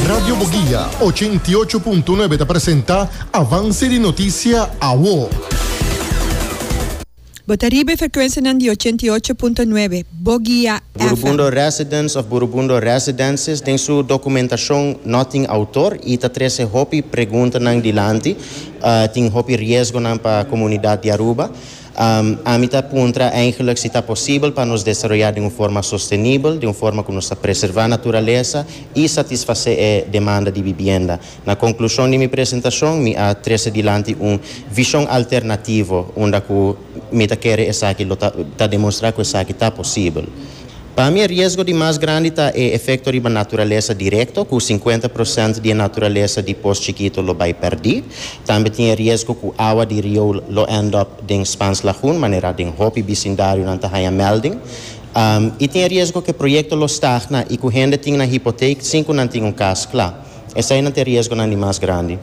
Radio Boguia, ochenta i ocho punto nuebe ta presenta avanse di notisia awo. Bo ta riba e frekuensianan di ochenta i ocho punto nuebe Boguia FM. Burubundo Residence of Burubundo Residences den su documentashon no tin autor y ta trece hopi preguntanan dilanti. Tin hopi riesgonan pa comunidad di Aruba. Ami ta puntra eigenlik si ta posibel pa nos desaroyá den un forma sostenibel, den un forma ku nos ta preservá naturalesa i satisfasé e demanda di bibienda. Na konklushon di mi presentashon mi a trese dilanti un vishon alternativo unda ku mi ta kere esaki lo ta ta demonstrá ku esaki ta posibel. Pa mi e riesgo di mas grandi ta e efekto riba naturalesa direkto, ku sinkuenta prosènt di e naturalesa di pos chikito lo bai pèrdí. Tambe tin e riesgo ku awa di rioul lo end up den Spans Lagoon, manera den hopi bisindarionan ta haña mèlding. I tin e riesgo ku e proyekto lo stagna i ku hende tin nan hipotake sin ku nan tin un kas kla. Eseinan ta e riesgonan di mas grandi.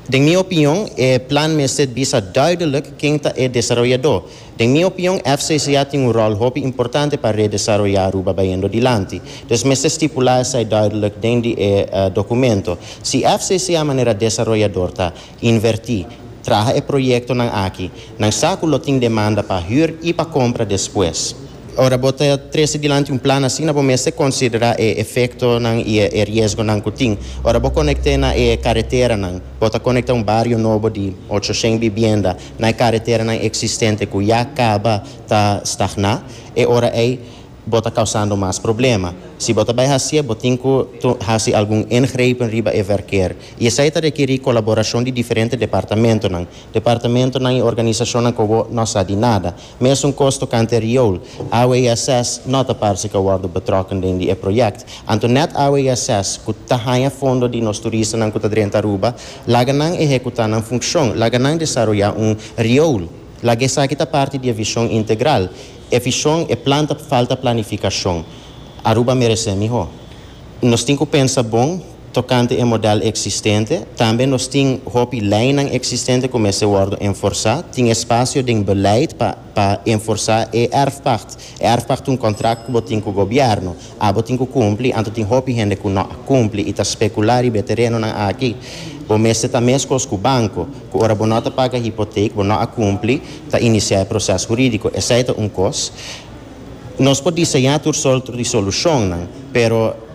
Den mi opinion, e plan mester bisa duidelik ken ta e desaroyadó. Den mi opion FCCA tin un ròl hopi importante pa redesaroyá Aruba bayendo dilanti. Pues mester stipulá esei duidelijk den di e dokumento. Si FCCA manera desaroyador ta invertí, traha e proyektonan aki, nan sa ku lo tin demanda pa hür i pa kompra despues. Ora bo ta trese dilanti un plan asina bo mester konsiderá e efektonan i e riesgonan ku tin. Ora bo konekt'é na e kareteranan, bo ta konektá un bario nobo di ocho shen bibienda, na e kareteranan eksistente ku ya kaba ta stagná, e ora ei bo ta kausando mas problema. Si bo ta bai hasié, bo tin ku hasi algun ingrepen riba e vèrker. I esei ta rekerí kolaborashon di diferente departamentonan, departamentonan i organisashonnan ku bo no sa di nada. Mesun kos tokante e riool, awe i ases no ta parse ka worde betrokken den di e project. Anto net awe i ases ku ta haña fondo di nos turistanan ku ta drenta Aruba, laga nan ehekutá nan funshon, laga nan desaroyá un riool, laga esaki ta parti di e vishon integral. E vishon, e plan ta falta planifikashon. Aruba meresé mihó. Nos tin ku pensa bon. Tokante e modèl eksistente, tambe nos tin hopi leinan eksistente ku mester wòrdu enforsá. Tin espasio den beleid pa pa enforsá e èrfpakt. E èrfpakt ta un kontrakt ku bo tin ku gobièrnu. Abo tin ku kumpli, anto tin hopi hende ku no a kumpli i ta spekulá riba e terenonan aki. Bo mester ta meskos ku banko, ku ora bo no ta paga hipotek, bo no a kumpli, ta inisiá e proses hurídiko. Esei ta un kos. Nos por diseñá tur sort di solushonnan, pero.